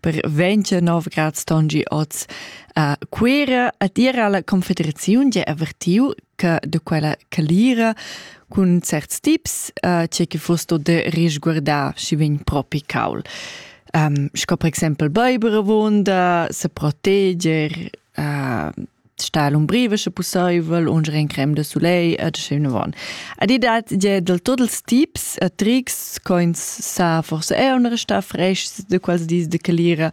per 29 grad stongi oz a Cuira a dire alla Confederazione che avvertiu che de quella calira cun certs tips uh, c'è che fosto de risguardar si vegn propi caul. Um, sco per exempel Beiberovonda, se proteger, sta l'umbriva sche pussaivel un in crem de soleil et schön von ad i dat je del tot els tips e tricks coins sa forse è un resta fresh de quals dis de calira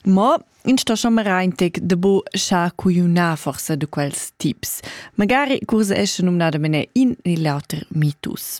mo in sto someraintec de bo scha cuiuna forse de quels tips magari curse esce numnada mene in e l'auter mitus